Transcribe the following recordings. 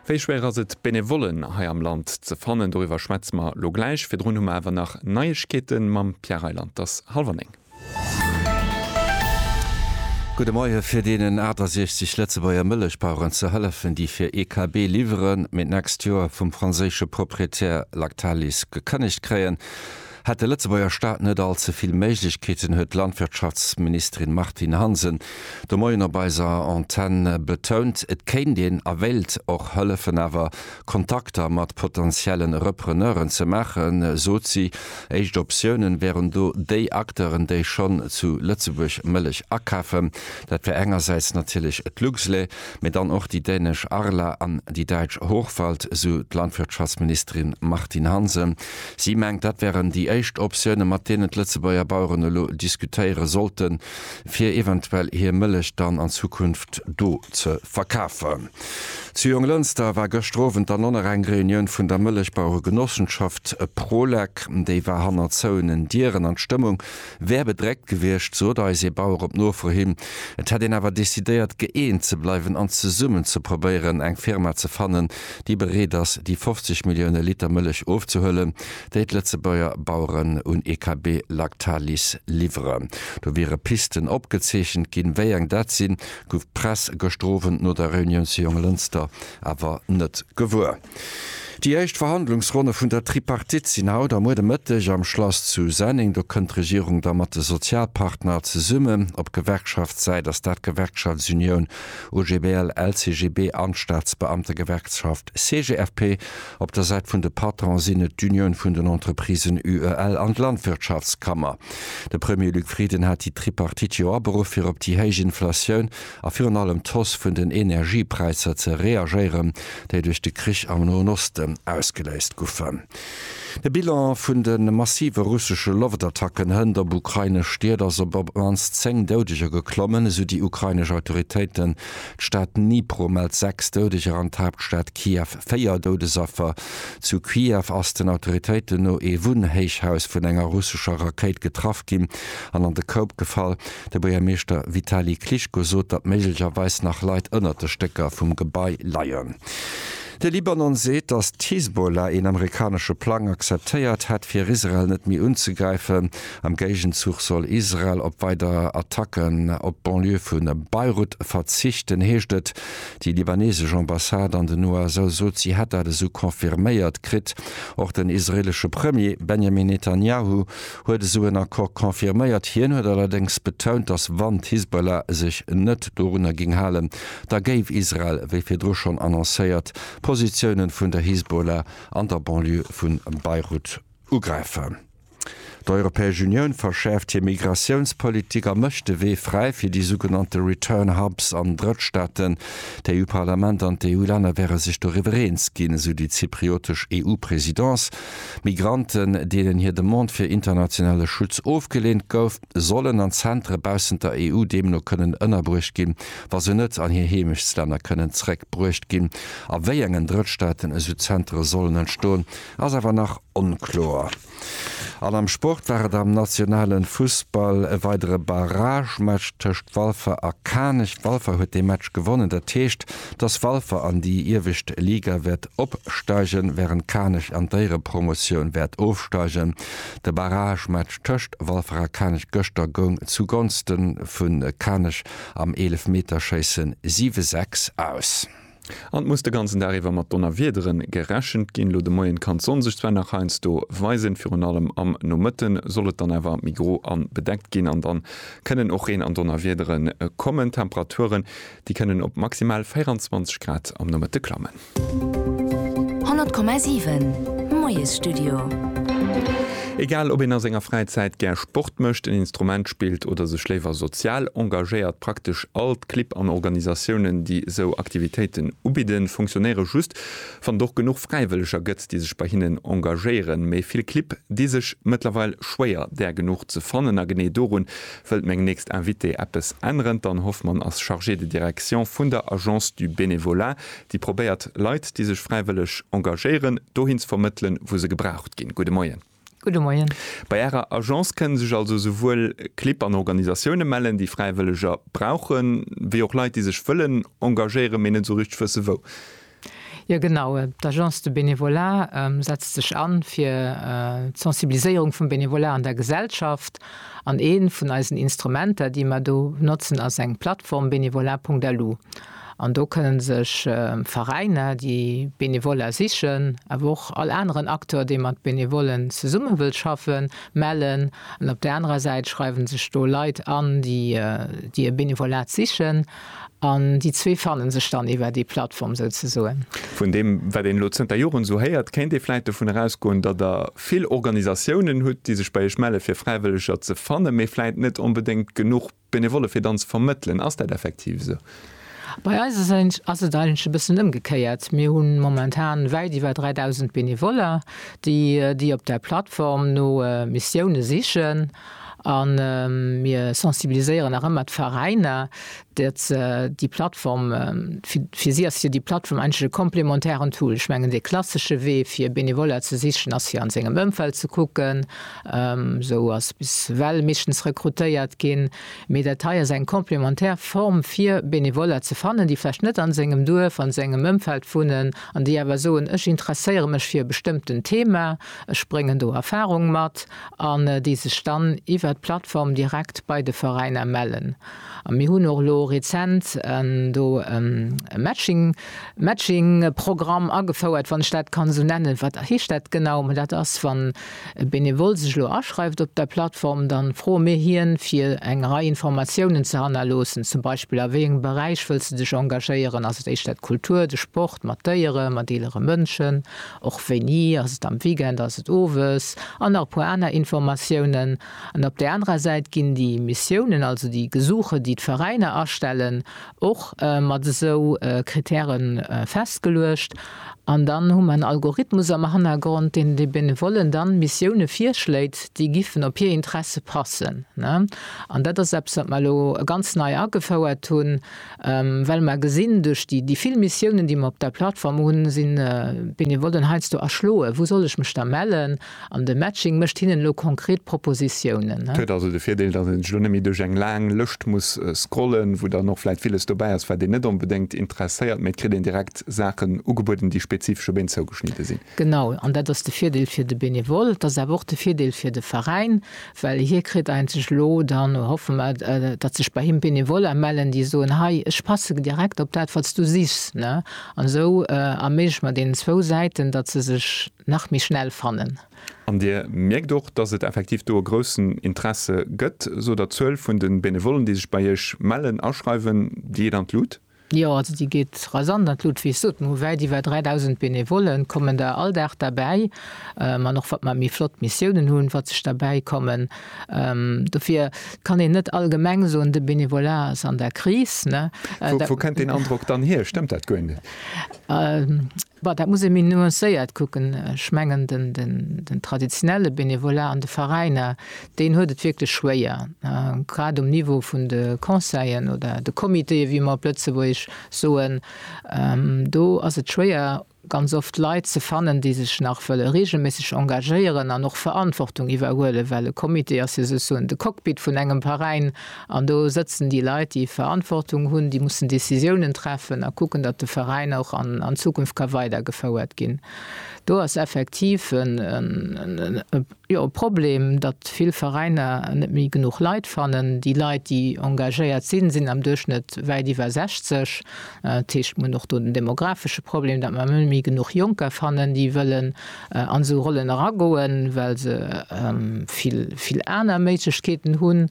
Wéi schwéier ass et Benevollen hei am Land ze fannen? Doriwwer schwätze mer lo gläich. Virdrun hu mer awer nach Neiegkeete mam Pierre Reyland. Et ass hallwer néng. Gudde Moie fir deenen 68 Lëtzebuerger Mëllechbaueren ze hëllefen, déi fir ee KB liwweren, mee d'nächst Joer vum franséische Proprietär Lactalis gekënnegt kréien. Hätt de Lëtzebuerger Staat net all ze vill Méiglechkeeten, huet d'Landwirtschaftsministerin Martine Hansen de Moien op eiser Antenn betount. Et kéint een a wéilt och hëllefen, awer Kontakter mat potentielle Repreneuren ze maachen, sot si. Éischt Optiounen wären do déi Acteuren, déi schonn zu Lëtzebuerg Mëllech akafen. Dat wär engersäits natierlech d'Luxlait, mee dann och déi dänesch Arla an déi däitsch Hochwald, sou d'Landwirtschaftsministerin Martine Hansen. Si mengt, dat wären déi éischt Optioune mat deenen d'Lëtzebuerger Baueren elo diskutéiere sollten, fir eventuell hir Mëllech dann an Zukunft do ze verkafen. Zu Jonglënster war gëschter Owend dann och nach eng Reunioun vun der Mëllechbauere-Genossenschaft Prolec. Déi war hannert zouenen Dieren an d'Stëmmung Wär bedreckt gewiescht, sot eis ee Bauer op Nofro hin. Et hätt een awer decidéiert, gëeent ze bleiwen an zesummen ze probéieren, eng Firma ze fannen, déi bereet ass, déi 50 Millioune Liter Mëllech ofzehuelen, déi d'Lëtzebuerger Baueren un EKB Lactalis liwweren. Do wiere Pisten opgezeechent ginn. Wéi eng dat sinn, gouf d'Press gëschter Owend no der Reunioun zu Jonglënster awer net gewuer. Déi éischt Verhandlungsronne vun der Tripartite sinn haut a muer de Mëtteg am Schlass zu Senneng. Do kënnt d'Regierung da mat de Sozialpartner zesummen. Op Gewerkschaftssäit ass dat d'Gewerkschaftsunioun OGBL-LCGB an d'Staatsbeamtegewerkschaft CGFP. Op der Säit vun de Patronen sinn et d'Unioun vun den Entreprisen UEL an d'Landwirtschaftskammer. De Premier Luc Frieden hat déi Tripartite jo aberuff, fir op déi héich Inflatioun a virun allem d'Hausse vun den Energiepräisser ze reagéieren, déi duerch de Krich am Noen Osten ausgeléist goufen. De Bilan vun de massive russesche Loftattacken hënt op ukrainesch Stied ass op op d'mannst 10 Doudeger geklommen, esou déi ukrainesch Autoritéiten. D'Stad Dnipro mellt 6 Doudeger an d'Haaptstad Kiew 4 Doudesaffer. Zu Kiew ass den Autoritéiten no ee Wunnhéichhaus vun enger russescher Rakéit getraff ginn an an de Koup gefall. De Buergermeeschter Vitali Klitschko sot, datt méiglecherweis nach Leit ënnert de Stécker vum Gebai leien. De Libanon seet, datt d'Hisbollah een amerikanesche Plang akzeptéiert hätt, fir Israel net méi unzegräifen. Am Géigenzuch soll Israel op weider Attacken op d'Banlieue vu Beirut verzichten, heescht et. Déi libanesesch Ambassade an den USA sot, si hätt dat esou confirméiert kritt. Och den israeelesche Premier Benjamin Netanjahu huet esou en Accord confirméiert. Hien huet allerdéngs betount, datt wann d'Hisbollah sech net dorunner géing halen, da géif Israel, wéi virdru schonn annoncéiert, d'Positioune vun der Hisbollah an der Banlieue vu Beirut ugräifen. D'Europäesch Unioun verschäerft hir Migratiounspolitik a mécht de Wee fräi fir déi sougenannte Return Hubs an Drëttstaaten. D'EU-Parlament an d'EU-Länner wäre sech doriwwer eens ginn, esou déi zypriotesch EU-Presidence. Migranten, deenen hir Demande fir internationale Schutz ofgeleent gouf, sollen an Zentere baussent der EU deemno kënnen ënnerbruecht ginn, wa se net an hir Heemechtslänner kënnen zréck bruecht ginn. A wéi engen Drëttstaaten esou Zentere sollen entstoen, ass awer nach onkloer. An am Sport war et am nationale Fussball e weidere Barragematch tëscht Walfer a Kanech. Walfer huet dee Match gewonnen, dat heescht, dass Walfer an déi iewescht Liga wäert opsteigen, wärend Kanech an d'Éierepromotioun wäert ofsteigen. De Barragematch tëscht Walfer a Kanech gëschter goung zu Gonste vu Kanech am Eelefmeterschéisse 7, 6 aus. An et muss de ganzen Dag iwwer mat Donnerwiedere gerechent ginn. Elo de Moien kann d'Sonn sech zwar nach heiansdo weisen, virun allem am Nomëtten soll et dann awer méi gro an bedeckt ginn an dann kënnen och Reen an Donnerwiedere kommen. D'Temperature Déi kënnen op maximal 24 Grad am Nomëtte klammen. 100,7 Moiesstudio. Egal ob een a senger Fräizäit gär Sport mécht, en Instrument spillt oder sech léiwer sozial engagéiert, praktesch all d'Clibb an Organisatiounen, déi esou Aktivitéiten ubidden, funktionéiere just, wann et och genuch Fräiwëlleger gëtt, déi sech bei hinnen engagéieren. Mee vill Clibb di sech mëttlerweil schwéier, där genuch ze fannen. A genee dorun Wëllt meng nächst Invitée eppes änneren? D'Anne Hoffmann ass Chargée de direction vun der Agence du bénévolat, déi probéiert, Leit, déi sech fräiwëlleg engagéieren, dohin ze vermëttelen, wou se gebraucht ginn. Gudde Moien. Gudde Moien. Bei Ärer Agence kënne sech also esouwuel Clibb an Organisatioune mellen, déi Fräiwëlleger brauchen, wéi och Leit, déi sech wëllen engagéieren, mee net esou richteg wësse wou. Jo genau, d'Agence de Bénévolat setzt sech an fir d'Sensibiliséierung vum Bénévolat an der Gesellschaft. An ee vun eisen Instrumenter, déi mer do notzen, ass eng Plattform, Bénévolat.lu. An do kënnen sech Veräiner, déi Bénévoler sichen, awer och all aneren Acteur, dee mat Bénévolen zesumme wëllt schaffen, mellen. An op där anerer Säit schreiwe sech do Leit an, déi e Bénévolat sichen. An déi zwee fanne sech dann iwwer déi Plattform souzesoen. Vun deem, wat een elo zënter Joren esou héiert, kéint ee vläicht dovun erausgoen, datt Der vill Organisatiounen hutt, déi sech bei Iech melle fir Fräiwëlleger ze fannen, mee vläicht net onbedéngt genuch Benevolle fir dann ze vermëttelen. Ass dat effektiv esou? Bei eis ass et eigentlech e bëssen ëmgekéiert. Mir hu momentan wäit iwwer 3.000 Benevoller, déi op där Plattform no Missioune sichen. A mir sensibiliséieren nach ëmmer d'Veräiner, datt se déi Plattform, fir si ass jo déi Plattform eigentlech e komplementären Tool. Ech mengen, dee klassesche Wee fir Benevoller ze sichen ass fir an sengem Ëmfeld ze kucken. Esou ass bis ewell meeschtens rekrutéiert ginn. Mee dat hei ass eng komplementär Form fir Benevoller ze fannen, déi vläicht net an sengem Duerf, an sengem Ëmfeld wunnen an déi awer soen, ech interesséiere mech fir e bestëmmten Thema, ech bréngen do Erfarung mat. an déi sech dann iwwert d'Plattform direkt bei de Veräiner mellen. A mir hunn och elo rezent do e Matching, Matching-Programm agefouert, wann ech dat kann esou nennen. Wat heescht dat genau? Mä dat ass, wann e Benevole sech elo aschreift op der Plattform, da froe mir hien, fir eng Rei Informatiounen ze hannerloossen, zum Beispill, a wéi engem Beräich wëlls de dech engagéieren? Ass et éischter d'Kultur, de Sport, mat Déieren, mat eelere Mënschen och wéini, ass et am Weekend, ass et owes, an nach e puer aner Informatiounen. An op där anerer Säit ginn déi Missiounen, also déi Gesuche, déi d'Veräiner astellen, och mat esou Kritäre festgeluecht. An dann hu mer en Algorithmus am Hannergrond, deen de Benevollen dann Missioune virschléit, déi giffen op hir Interesse passen. An dat ass eppes, wat mer elo ganz nei agefouert hunn. Well mer gesinn, duerch déi vill Missiounen, déi mer op där Plattform hunn, sinn d'Benevollen heiansdo erschloen, Wou soll ech mech da mellen? An de Matching mécht hinnen elo konkret Propositiounen. Et huet also de Virdeel, datt ee sech elo net méi duerch eng laang Lëscht muss scrollen, wou dann och vläicht villes dobäi ass, wat een net onbedéngt interesséiert, mee et kritt een direkt Saachen ugebueden, déi spezifesch op een zougeschnidde sinn. Genau, an dat ass de Virdeel fir de Benevole. Et ass awer och de Virdeel fir de Veräin, Well hie kritt eenzeg elo, dann hoffe mer, datt sech bei him Benevoller mellen, déi soen, Hei, ech passe direkt op dat, wat s du sichs. An esou erméigleche mer deenen zwou Säiten, datt se sech nach méi schnell fannen. An Dir mierkt och, datt et effektiv do e groussen Interesse gëtt. Sot der d'Zuel vun de Benevollen, déi sech bei Iech mellen, aschreiwen, déi Iech an d'Lut? Jo, also déi geet rasant an d'Lut. Wéi ech soten, hu wäit iwwer 3.000 Benevollen, kommen der all Dag derbäi. An och wat mer méi flott Missiounen hunn, wat sech derbäi kommen. Dofir kann een net allgemeng soen, de Benevolat ass an der Kris. Wou kennt deen Androck dann hier? Stëmmt dat guer net? Bon, dat muss ee méi nuancéiert kucken. Ech mengen, den traditionelle Bénévolat an de Veräiner, deen huet et wierklech schwéier, grad um Niveau vun de Conseillen oder de Comitéë wéi mer op Lëtzebuergesch soen. Do ass et schwéier, ganz oft Leit ze fannen, déi sech nach wëlle reegelméisseg engagéieren an och Verantwortung iwwerhuelen, well e Comité ass jo souzesoen de Cockpit vun engem Veräin. An do sëtzen déi Leit, déi Verantwortung hunn, déi mussen Décisiounen treffen a kucken, datt de Veräin och an Zukunft ka weidergefouert ginn. Do ass effektiv e Problem, datt vill Veräiner net méi genuch Leit fannen. Déi Leit, déi engagéiert sinn, sinn am Duerchschnëtt wäit iwwer 60. Dat heescht, mir hunn och do den demographesche Problem, datt mer net méi genuch Jonker fannen, déi wëllen an esou Rollen eragoen, well se vill aner Méiglechkeeten hunn.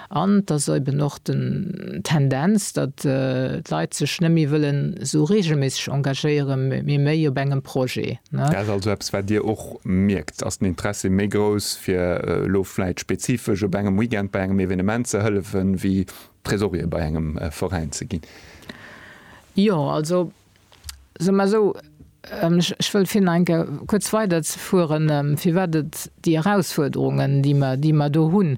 An et ass eben och den Tendenz, datt d'Leit sech net méi wëllen esou reegelméisseg engagéiere mee méi op engem Projet. Dat ass also eppes, wat Dir och mierkt. Ass den Interessi méi grouss, fir elo vläicht spezifesch op engem Weekend bei engem Evenement ze hëllefen, wéi Tresorier bei engem Veräin ze ginn? Jo, also Soe mer esou, ech wëll fir nach eng Kéier kuerz weiderzefueren, firwat et déi Erausfuerderungen, déi mer do hunn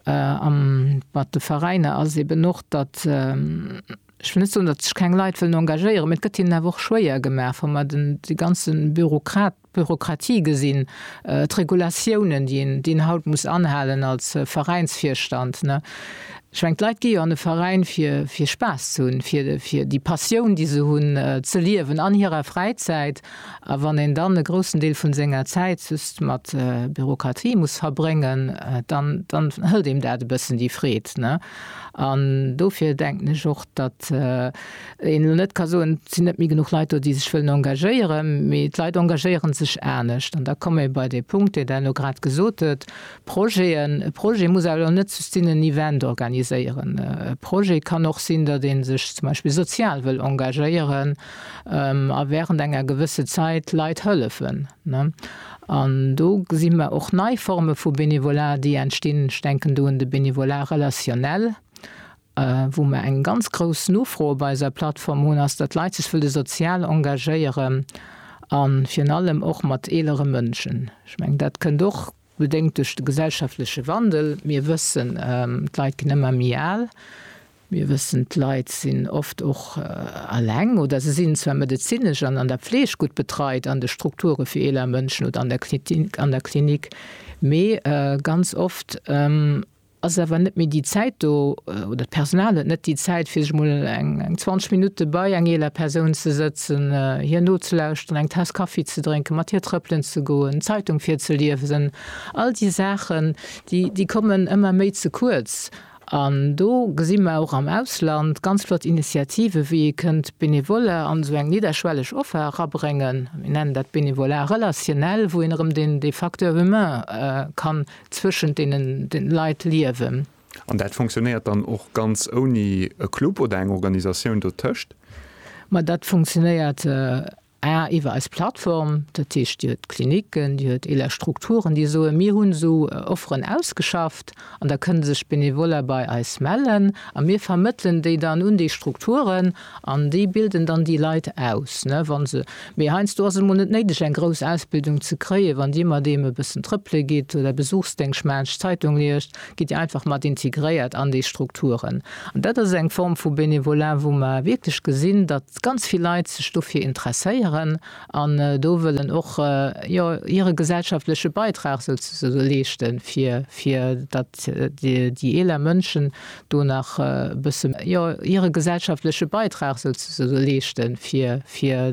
mat de Veräiner, ass eben och, datt, ech wëll net soen, datt sech keng Leit wëllen engagéieren, mä et gëtt hinnen awer och schwéier gemaach, wa mer déi ganze Bürokrat, Bürokratie gesinn, d'Regulatiounen, déi een, déi een haut muss anhalen als Veräinsvirstand. Ech mengen, d'Leit gi jo an e Veräin, fir, fir Spaass ze hunn, fir, fir déi Passioun, déi se hunn, ze liewen an hirer Fräizäit. A wann een dann e groussen Deel vu senger Zäit just mat Bürokratie muss verbréngen, dann, dann hëlt deem dat e bëssen déi Freed. An dofir denken ech och, datt, een elo net ka soen, et sinn net méi genuch Leit do, déi sech wëllen engagéieren, mee d'Leit engagéiere sech anescht. An da komme mir bei dee Punkt, deen Der elo grad gesot hutt, Projeten. E Projet muss awer elo net just sinn, en Event organiséieren. E Projet kann och sinn, datt ee sech zum Beispill sozial wëll engagéieren a während enger gewësse Zäit Leit hëllefen. An do gesi mer och nei Forme vu Bénévolat, déi entstinn. Ech denken do un de Bénévolat relationnel, Wou mer eng ganz grouss Nofro op eiser Plattform hunn, ass, datt Leit sech wëlle sozial engagéieren a virun allem och mat eelere Mënschen. Ech mengen, dat kënnt och bedéngt duerch de gesellschaftleche Wandel. Mir wëssen, d'Leit ginn ëmmer méi al. Mir wëssen, d'Leit sinn oft och eleng oder se sinn zwar medezinesch an an der Fleeg gutt betreit an de Strukture fir eeler Mënschen oder an der Klinik, mee ganz oft ass awer net méi déi Zäit do oder d'Personal huet net déi Zäit, fir sech mol eng 20 Minutte bei eng eeler Persoun ze sëtzen, hir nozelauschteren, eng Taass Kaffi ze drénken, mat hir trëppelen ze goen, d'Zeitung virzeliewsen. All déi Saachen, déi kommen ëmmer méi ze kuerz. An do gesi mer och am Ausland ganz flott Initiativen, wéi ee kënnt Benevole an esou eng nidderschwelleg Offer erabréngen, mir nennen dat Bénévolat relationnel, wou een erëm dee Facteur humain ka zwëschent deenen Leit liewen. An dat funktionéiert dann och ganz ouni e Club oder eng Organisatioun dotëscht? Ma dat funktionéiert A iwwer eis Plattform, dat heescht Dir huet Klinicken, Dir huet eeler Strukturen, déi soen, mir hunn esou Offeren ausgeschafft an da kënne sech Benevoller bei eis mellen a mir vermëttelen déi dann un déi Strukturen. An déi bilden dann déi Leit aus, ne, wa se, mee heiansdo ass et emol net néideg, eng grouss Ausbildung ze kréien. Wann Dir mat deem e bëssen trëppele gitt oder Besuchsdéngscht maacht, Zeitung liest, gitt Dir einfach mat integréiert an déi Strukturen. An dat ass eng Form vu Bénévolat, wou mer wierklech gesinn, datt ganz vill Leit sech dofir interesséieren an do wëllen och, jo, hire gesellschaftleche Beitrag souzesoe leeschten, fir, fir datt déi eeler Mënschen do nach e bësse jo hire gesellschaftleche Beitrag souzesoe leeschten, fir, fir